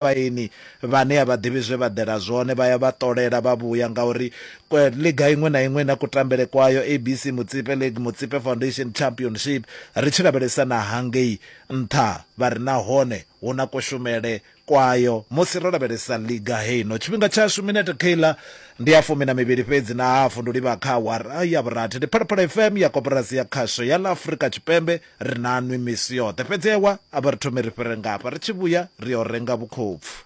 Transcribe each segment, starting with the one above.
vhaini vhane a vha ḓivhi zwe vha ḓela zwone vha ya vha ṱolela vha vhuya ngauri ḽiga iṅwe na iṅwe na kutambele kwayo ABC Mutsipe League Mutsipe Foundation Championship ri tshi lavhelesa na hangei nṱha vha ri nahone hu na kushumele kwayo musi ro lavhelesa ḽiga heino tshifhinga tshashu minete keiḽa ndi ya fumi na mivhili fhedzi na hafu ndi livha kha awara ya vhurathi ndi phalaphala fm ya koporasi ya khasho ya ḽa afrika tshipembe Ri na nwi misi yoṱhe, fhedzi ewa, a vha ri thome ri fhire nga hafha, ri tshi vhuya ri yo renga vhukhopfu.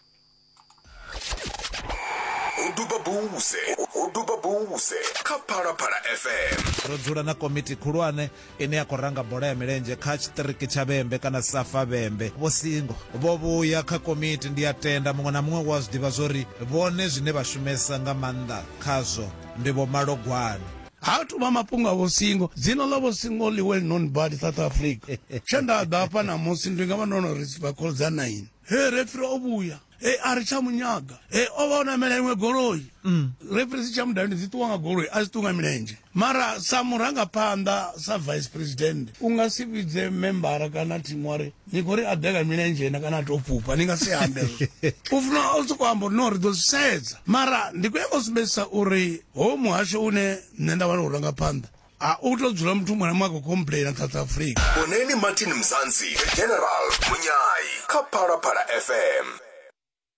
Ho duba buse, ho duba buse kha Phalaphala FM. Ro dzula na komiti khulwane ine ya khou ranga bola ya milenzhe kha tshiṱiriki tsha Vhembe kana Safa Vhembe. Vho Singo vho vhuya kha komiti, ndi a tenda muṅwe na muṅwe u a zwi ḓivha zwo ri vhone zwine vha shumesa nga maanḓa khazwo ndi vhomalogwane. ha tuvha mafhungo a vhosingo dzina ḽa vhosingo ḽi well known bad south africa tshe nda ḓa hafha ṋamusi ndi nga vha ndo no ri vhakholo dza nine he refri o vhuya e a ri tsha munyaga e o vha o namela iṅwe goloi mm. refri si tsha mudavhi ndi dzi ṱuwa nga goloi a dzi ṱuwa nga milenzhe mara sa murangaphanḓa sa vice president u nga si vhidze membara kana thimu wa ri ni khou ri a beka milenzhe na kana a tou fhufha ni nga si ambe u funa u sokou amba uri no ri ḓo zwi sedza mara ndi khou yanga u sumbedzisa uri ho muhasho une nṋe nda vhana u ranga phanḓa a u tou dzula muthu muṅwe na muṅwe a khou complaina south africa boneni martin mzansi general munyai kha phalaphala fm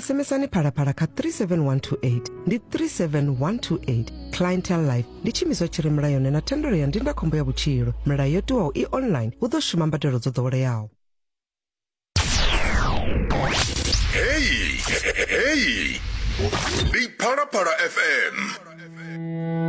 sms-ani phalaphala kha 37128 ndi 37128 clientel life ndi tshiimiswa tshi re mulayoni na thendelo ya ndindakhombo ya vhutshilo milayo yo tiwaho i online hu ḓo shuma mbadelo dzo ḓoweleaho heyi heyi ndi phalaphala fm